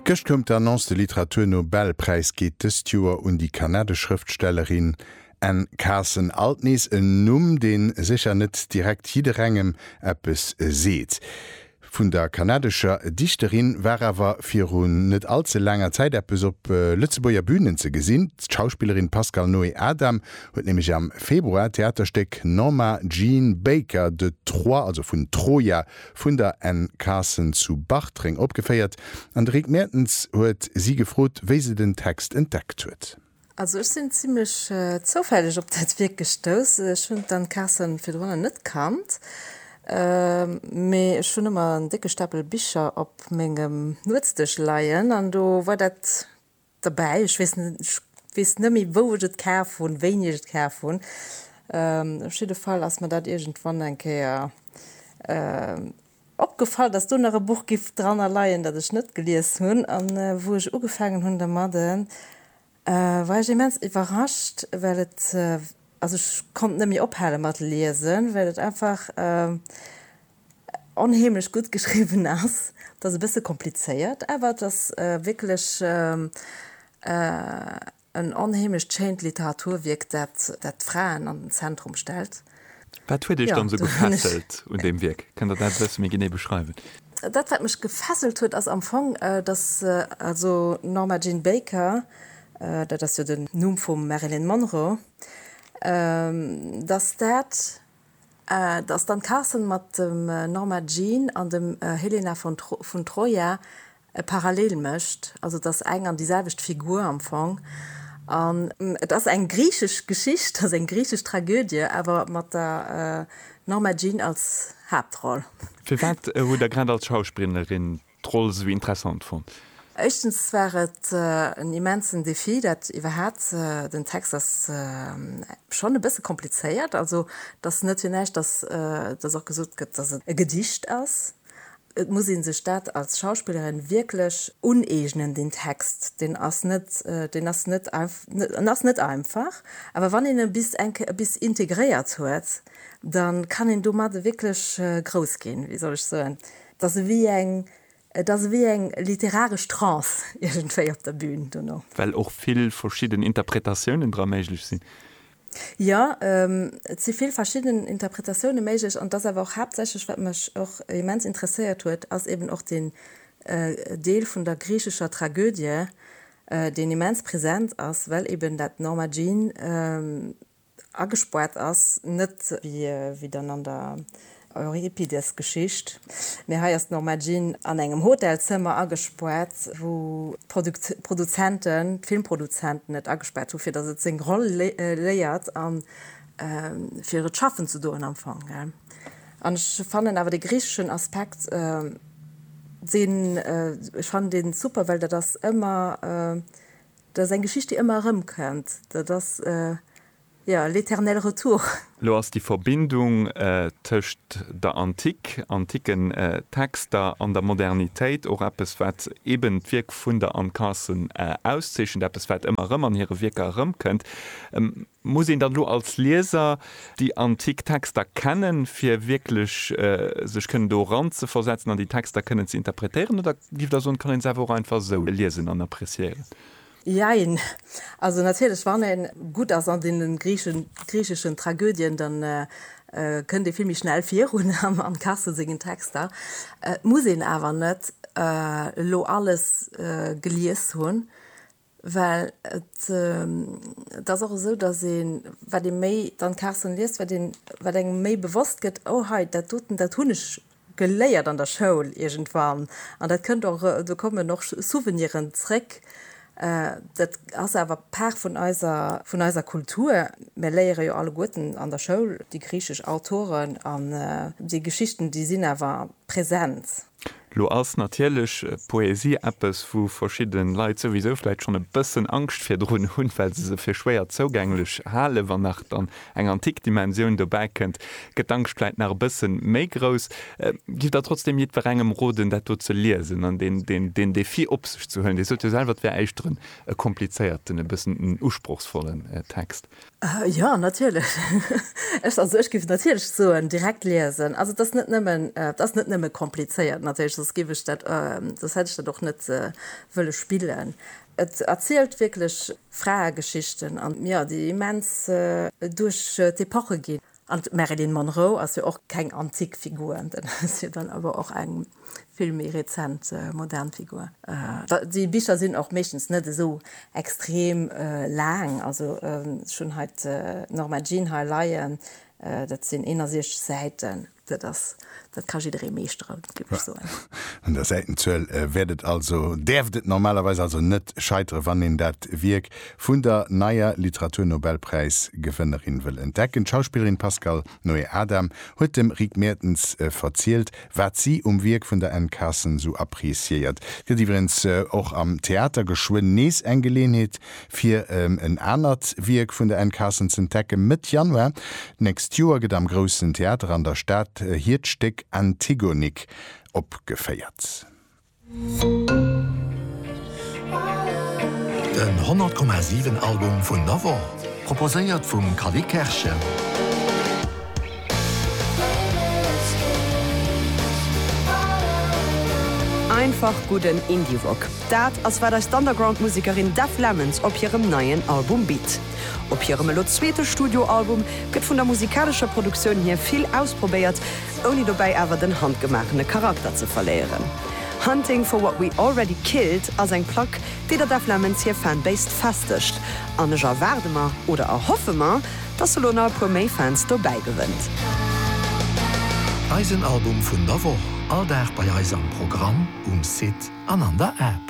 Gëscht koum d'Annonce, de Literatur-Nobelpräis geet dëst Joer un déi kanadesch Schrëftstellerin Anne Carson. Alt nees en Numm, dee sécher net direkt jidderengem eppes seet. Vun der kanadescher Dichterin war awer viru net all ze laanger Zäit eppes op Lëtzebuerger Bünen ze gesinn. D'Schauspillerin Pascale Noé-Adam huet nämlech am Februar d'Theaterstéck Norma Jean Baker de Troie, also vun Troja, vun der Anne Carson zu Bartreng opgeféiert an de Rick Mertens huet si gefrot, wéi se den Text entdeckt huet. Also ech sinn zimlech zoufälleg op dat Wierk gestouss. Ech hunn d'Anne Carson virdrunner net kannt, mee ech hunn ëmmer en décke Stapel Bicher op mengem Nuetsdësch leien an do war dat Derbäi, ech weess net, ech weess net méi wou ech et kaf hunn, wéini ech et kaf hunn, op jidde Fall ass mer dat iergendwann eng Kéier opgefall, dass do nach e Buch giff dranner leien, dat ech net gelies hunn, an wou ech ugefaangen hunn dermadden, war ech immens iwwerrascht, well et, also ech konnt net méi ophale mat liesen, well et einfach onheemlech gutt geschriwwen ass. Et ass e bësse komplizéiert, awer et ass wierklech en onheemlecht schéint Literaturwierk, dat d'Fraen an den Zentrum stellt. Wat huet Iech dann esou gefesselt un deem Wierk? Kënnt Der dat e bësse méi genee beschreiwen? Dat, wat mech gefesselt huet, ass am Fong, dass also d'Norma Jean Baker, dat ass jo den Numm vum Marilyn Monroe, dass dat Dass d'Anne Carson mat dem Norma Jean an dem Helena von Troja e Parallel mécht, also dass eng an déi selwecht Figur am Fong, an. Et ass eng griichesch Geschicht, also eng griichesch Tragödie, awer mat der Norma Jean als Haaptroll. Firwat hutt Der grad als Schausprinnerin D'Roll esou interessant fonnt. Éischtens war et en immensen Defi, dat iwwerhaapt. Den Text ass schonn e bësse komplizéiert, also et ass net fir näischt, dass dass och gesot gëtt, dass et e Gedicht ass. Et muss ee sech dat als Schauspillerin wierklech uneegnen, deen Text, deen ass net, deen ass net, en ass net einfach. Awer wann een e bis eng Kéier e bis integréiert huet, da kann een domat wierklech grouss ginn, wéi soll ech soen. Et ass ewéi eng, et ass ewéi eng literaresch Trance iergendwéi op der Bühn dono. Well och vill verschidden Interpretatiounen dra méiglech sinn. Jo, et si vill verschidden Interpretatioune méiglech. An et ass awer och haaptsächlech, wat mech och immens interesséiert huet, ass eeben och deen Deel vun der griichescher Tragödie, deen immens present ass, well eeben dat Norma Jean agespoart ass, net wéi dann an der Euripides-Geschicht, mee hei ass d'Norma Jean an engem Hotelzëmmer agespoart, wou d'Produzenten, d'Filmproduzenten et agespaart hu fir datt et seng Roll léiert a fir et schaffen ze doen am Fong. An ech fannen awer dee griicheschen Aspekt, deen, ech fannen dee super, well dat ass ëmmer Dat ass eng Geschicht, déi ëmmer erëmkënnt. Dat ass, jo, l'éternel retour. Lo ass déi Verbindung tëscht der Antik, anticken Texter an der Modernitéit och eppes, wat eben d'Wierk vun der Anne Carson auszeechent, eppes, wat ëmmer erëm an hire Wierker erëmkënnt. Muss een dann elo als Lieser déi antik Texter kennen, fir wierklech sech kënnen do eranzeversetzen an déi Texter kënnen ze interpretéieren, oder giff Der soen, et kann een se awer och einfach esou liesen an appreciéieren? Jein. Also natierlech, wann ee gutt ass an deene griicheschen Tragödien, da kënnt ee vill méi schnell virun am Cassel sengen Texter. Et muss een awer net elo alles gelies hunn. Well et et ass och esou, datt ee wat ee méi dann d'Carsen liest, wat ee wat engem méi bewosst gëtt, oh hei dat doten, dat hunn ech geléiert an der Schoul iergendwann an dat kënnt och do kommen och Souveniren zréck. Dat ass awer Part vun eiser vun eiser Kultur. Mir léiere jo alleguerten an der Schoul déi griichesch Autoren an déi Geschichten, déi sinn awer present. Lo ass natierlech Poesie eppes, wou verschidde Leit souwisou vläicht schonn e bëssen Angscht virdrun hunn, well se se fir schwéier zougänglech halen. Wann nach dann eng antik Dimensioun dobäi kënnt, gëtt d'Angscht vläicht nach e bësse méi grouss. Giff Der trotzdeem jiddwerengem roden, dat do ze liesen an deen Defi op sech ze huelen? Dir sot jo selwer, et wär éischter e komplizéierten, e bëssen en usprochsvollen Text. Jo, natierlech. Also ech géif natierlech soen, direkt liesen. Also et ass net nëmmen, et ass net nëmme komplizéiert natierlech, soss géif ech dat, soss hätt ech dat och net wëlle spillen. Et erzielt wierklech Fraegeschichten an, jo, déi immens duerch d'Epoche ginn. An d'Marilyn Monroe ass jo och keng antik Figur, dat ass jo dann awer och eng vill méi rezent, modern Figur. Déi Bicher sinn och meeschtens net esou extrem laang. Also ech hunn hei d'Norma Jean hei leien, dat sinn 61 Säiten. Dat ass Dat ka jidderee meeschteren, géif ech soen. Un der Säitenzuel wäert et also, däerft et normalerweis also net scheiteren, wann een dat Wierk vun der neier Literaturnobelpräis-Gewënnerin wëll entdecken. D'Schauspillerin Pascale Noé-Adam huet dem Rick Mertens verzielt, wat si um Wierk vun der Anne Carson sou appreciéiert. Et gëtt iwwerens och am Theater geschwënn nees eng Geleeënheet, Fir en anert Wierk vun der Anne Carson z'entdecken, Mëtt Januar d'nächst Joer gëtt am Groussen Theater an der Stad hiert Stéck Antigonique opgeféiert. Den 100,7 Album vun der Woch proposéiert vum Kally Kerschen. Einfach gudden Indie-Rock, dat ass wat eis d'Underground-Musekerin Def Lemons op hirem neien Album bitt. Op hirem elo zweete Studioalbum gëtt vun der musikalescher Produktioun hier vill ausprobéiert, ouni dobäi awer den handgemaachene Charakter ze verléieren. Hunting for What We Already Killed ass eng Plack, déi der Def Lemons hir Fanbase festegt an ech erwaarde mer, oder erhoffe mer, Dass se lo nach e puer méi Fans dobäi gewënnt. Eisen Album vun der Woch, all Dag bei eis am Programm, um Site an an der App.